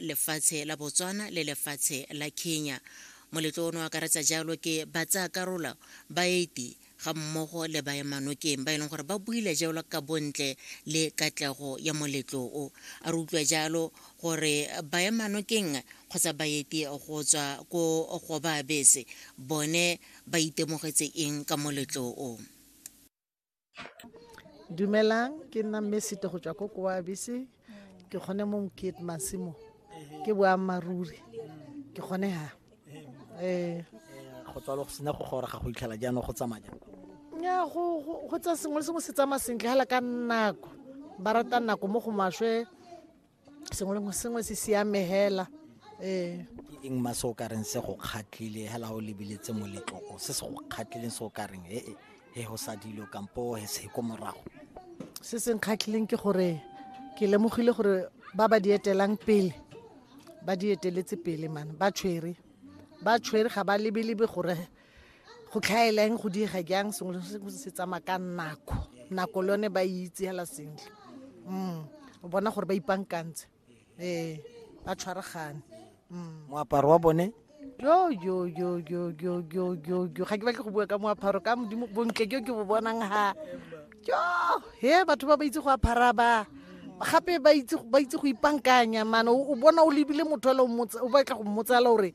lefatshe la Botswana le lefatshe la Kenya. Moletlo ono akaretsa jalo ke batsaya karola ba 80 ga mmogo le baemanokeng ba e leng gore ba buile jalo ka bontle le katlego ya moletlo o. A re utlwa jalo gore baemanokeng kgotsa baeti go tswa ko Gobaabese bone ba itemogetse eng ka moletlo o. dumelang ke nna mme sete go tswa ko koabise ke kgone mo mokete masimo ke boammaaruri ke kgone ha um go tswalo go sena go gora ga go itlhela jaanong go tsamaya nya go tsa sengwe le sengwe se tsamaya sentle fela ka nako ba rata nako mo go maswe sengwe le sengwe se siame hela ee ke eng ma se o ka reng se go kgatlhile hela o lebeletse moletloko se se go kgatlhileng se o ka reng e e go sa dilo kampo he se ko morago se se nkgatlhileng ke gore ke lemogile gore ba ba di etelang pele ba di eteletse pele mane ba tshwere ba tshwere ga ba lebelebe gore go tlhaela eng go diega jang sengwe le sengwe se tsamaya ka nako nako le yone ba e itse hela sentle mm o bona gore ba ipankantse ee ba tshwaragane mm. moaparo wa bone yo yo yo yo yo yo yo yo ga ke batle go bua ka moaparo ka modimo bontle jo ke bo bonang ha jo he batho ba ba itse go apara ba gape ba itse go ipankanya mane o bona o lebile motho o batla go mmotsala gore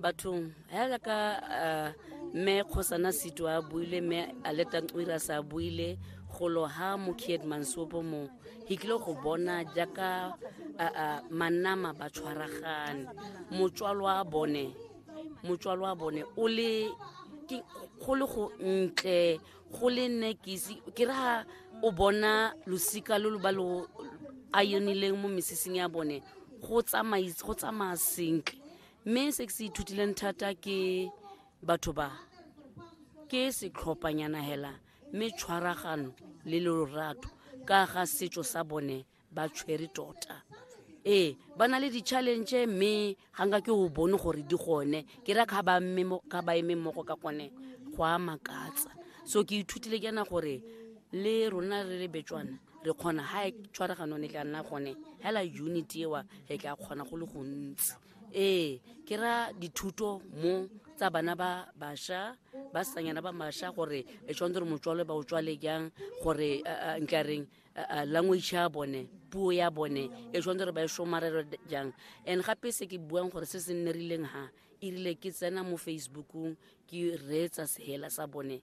bathong hela ka eh, mme kgosana seto a buile mme aletantswira sa buile golo ha mokied mansopo mo ke tlile go bona jaaka eh, eh, manama ba tshwaragane motswalo wa bone motswalo wa bone o le go le go ntle go le nne ke ra o bona losika lo lo ba lo a yonileng mo mesesing ya bone go tsamaya sentle mme se ke se ithutileng thata ke batho ba ke setlhophanyana hela mme tshwaragano le lorato ka ga setso sa bone ba tshwere tota ee ba na le di-challenge mme ga nka ke o bone gore di gone ke ra ga ba eme mmogo ka gone go a makatsa so ke ithutile ke na gore le rona re le betswana re kgona ga e tshwaragano ne tla nna gone hela unity ewa re tla kgona go le gontsi ee ke ra dithuto mo tsa bana ba basha ba sanyana ba masha gore e tshwanetse gore motswalwe ba o tswale jang gore nkareng language ya bone puo ya bone e tshwanetse gore ba e somarelo jang and gape se ke buang gore se se nnerileng ha e rile ke tsena mo facebookong ke reetsa sehela sa bone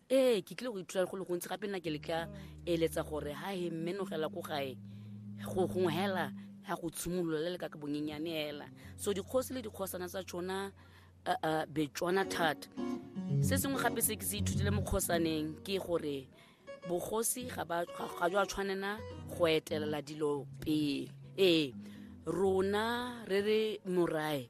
ee ke tlile go ithuta go le gontsi gape nna ke le ka eletsa gore ha he mmenogela ko gae go gongwe hela ya go tshimolola le le ka ka bonyenyane hela so dikgosi le dikgosana tsa tsona uh, uh, betswana thata se sengwe gape se ke se ithutile mo kgosaneng ke gore bogosi ga ba- ga- ga jo a tshwanela go etelela dilo pele ee rona re re morae